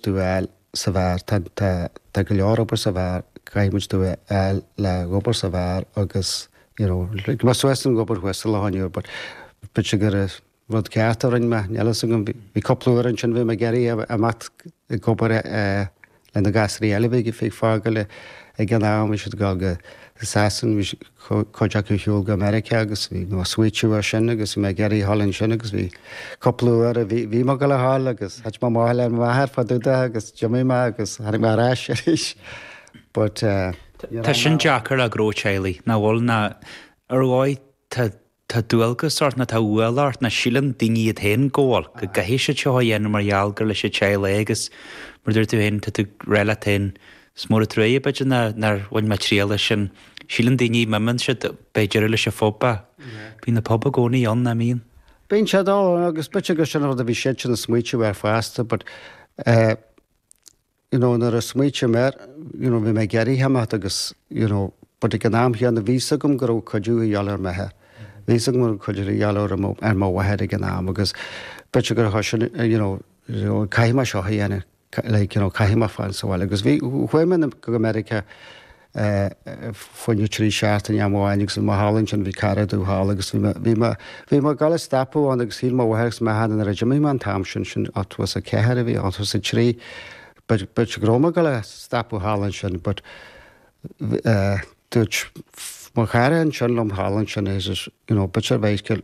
tú a fháil sa bheár. Tá, tá, tá go leor obair sa bheár, caithfidh muid tú a fháil le dh'obair sa bheár agus, you know, thug mé suas an obair thuas i Loch an Iúir but, b'fhéidir gur rud ceart a rinne mé, níl a fhios agam, bhí, bhí cúpla uair ansin, bhí mé ag iarraidh imeacht ag obair le na gasraí eile a bhí ag fágáil ag an am, bhí siad ag dul go Sasain, bhí siad, cuid acu ar shiúl go Meiriceá agus bhí mé ag smaoitiú air sin agus bhí mé ag iarraidh a dhul ansin agus bhí cúpla uair a bhí bhí mé ag dul a dhul agus thit mé amach le m'athair fá dtaobh de agus d'imigh mé agus tháinig mé ar ais arís but Tá sin deacair ag gnó teaghlaigh, nach bhfuil? Ná ar dhóigh tá Tá dualgas ort, nó tá ualach ort, nó síleann daoine iad féin go bhfuil, go gcaithfidh siad seo a dhéanamh mar gheall gur leis an teaghlach é agus mar a dúirt tú féin, tá tú ag rá leat féin, is mór an truaighe, b'fhéidir, nár bhain mé triail as sin. Síleann daoine, má imíonn siad, beidh deireadh leis an phobal. Bíonn an pobal i gcónaí ann, nach mbíonn? Bíonn siad ann, agus b'fhéidir gur sin an rud a bhí siadsan ag smaoitiú air fosta, but eh, you know nuair a smaoitigh mé air you know bhí mé ag iarraidh imeacht agus you know but ag an am chéanna bhí a fhios agam go raibh cuidiú a dhíobháil ar m'athair bhí a fhios agam go raibh cuidiú a dhíobháil ar mo ar mo mháthair ag an am agus b'fhéidir gur chuir sin you know you know caithfidh mé seo a dhéanamh like you know caithfidh mé fan sa bhile agus bhí chuaigh mé go Meiriceá Fá choinne trí seachtaine am amháin agus bhí mé thall ansin, bhí cara domh thall agus bhí mé, bhí mé ag dul a stopadh ann agus shíl mo mháthair agus m'athair nuair a d'imigh mé an t-am sin, sin ochtó is a ceathair a bhí ann, ochtó is a trí, b'fhéidir, b'fhéidir go raibh mé ag dul a stopadh thall ansin but dúirt mo chara ansin liom thall ansin he says, you know, b'fhéidir, b'fhéidir,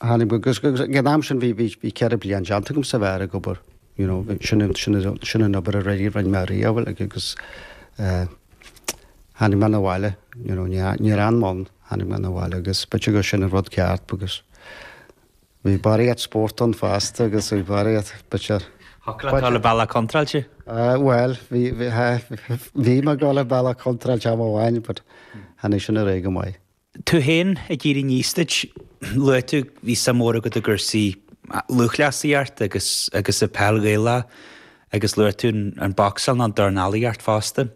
Tháinig mé, agus ag an am sin bhí ceithre bliain déanta agam sa bheár ag obair, you know, sin an obair a rinne mé riamh agus tháinig mé 'na bhaile, you know, níor fhan mé ann, tháinig mé 'na bhaile agus b'fhéidir gur sin an rud ceart agus bhí barraíocht spóirt ann fosta agus bhí barraíocht, b'fhéidir. Shocraítear le bealach contráilte? Bhuel, bhí mé ag dul an bealach contráilte am amháin, but tháinig sin ar aghaidh go maith. Tú féin ag éirí aníos duit. Luaigh tú bhí suim mhór agat i gcúrsaí lúthchleasaíochta agus agus i peil Ghaelach agus luaigh tú an boxáil ná an dornálaíocht fosta.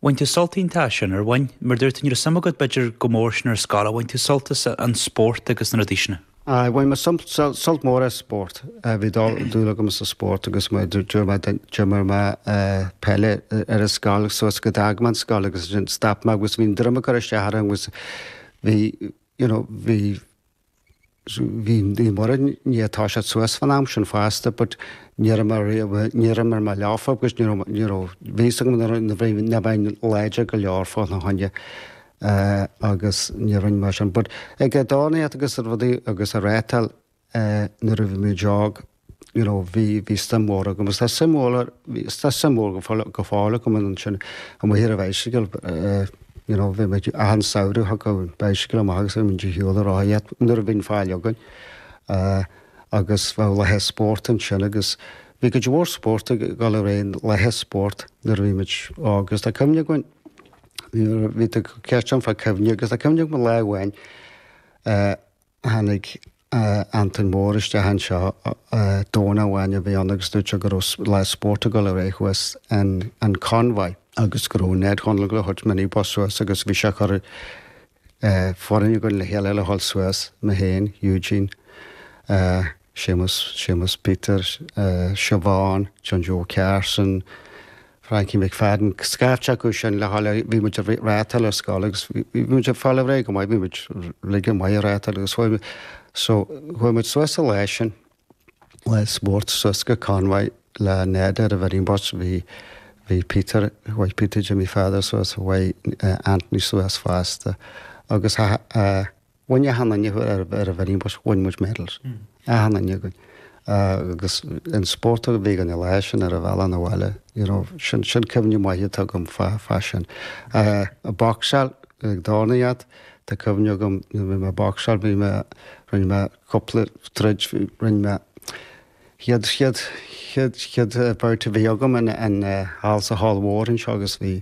Bhain tú sult iontach as sin, ar bhain? Mar dúirt tú ní raibh suim agat b'fhéidir go mór sin ar an scoil, ach bhain tú sult as an spórt agus na rudaí sin? Aye, bhain mé sult mór as spórt. Bhí dúil agam sa spórt agus d'imir mé peil ar an scoil suas go d'fhág mé an scoil agus ansin stop mé agus bhí an droim ag cur isteach orm agus bhí, you know, bhí, bhí, Naomh Muire i ndiaidh toiseacht suas fán am sin fosta but ní raibh mé riamh, ní raibh mé leofa agus ní raibh, you know, bhí a fhios agam nach mbeinn láidir go leor fána choinne eh, agus ní rinne mé sin. But ag dornaíocht agus rudaí agus ag reáchtáil eh, nuair a bhí muid óg, you know, bhí, bhí suim mhór agam. Is tá suim mhór, bhí- is tá suim mhór go fóill, go fóill agam ansin. Amuigh ar an bhicycle, eh, you know, bhí mé ag achan samhradh, thug an bicycle amach agus bhí mé ag dícheall ar fháth iad nuair a bhíonn faill againn. Eh, agus bheadh laethe spóirt ansin agus bhí cuid mhór spóirt ag dul ar aghaidh laethe spóirt nuair a bhí muid óg. Is tá cuimhne againn, Bhí tú ag ceist orm fá cuimhní agus tá cuimhne agam go lá amháin tháinig Antain Mór isteach anseo Domhnach amháin a bhí ann agus dúirt sé go raibh lá spóirt ag dul ar aghaidh thuas in Convoy agus go raibh Ned Honlagle ag thabhairt minibus suas agus bhí sé ag cur foireann againn le chéile le dhul suas, mé féin, Eugene, Séamus, Séamus Peter, Siobhán, John Joe Carson, Frankie McFadden, scaifte acu sin le haghaidh, bhí muid a' reáchtáil ar scoil agus bhí muid a' fáil ar aghaidh go maith, bhí muid uilig go maith a' reáchtáil agus chuaigh, so chuaigh muid suas an lá sin le spórt suas go Convoy le Ned ar an mhinibus, bhí, bhí Peter, chuaigh Peter Jimmy Pheadair suas, chuaigh Anthony suas fosta agus Bhain achan nduine ar an mhinibus, bhain muid medals, achan nduine againn. Agus an spórt a bhí againn, an lá sin ar an bhealach 'na bhaile, you know, sin, sin cuimhne mhaith atá agam fá, fá sin. Boxáil, ag dornaíocht, tá cuimhne agam, nuair a bhí mé ag boxáil, bhí mé, rinne mé cúpla troid, rinne mé, chéad, chéad, chéad, chéad bout a bhí agam in, in, thall sa hall mhór anseo agus bhí,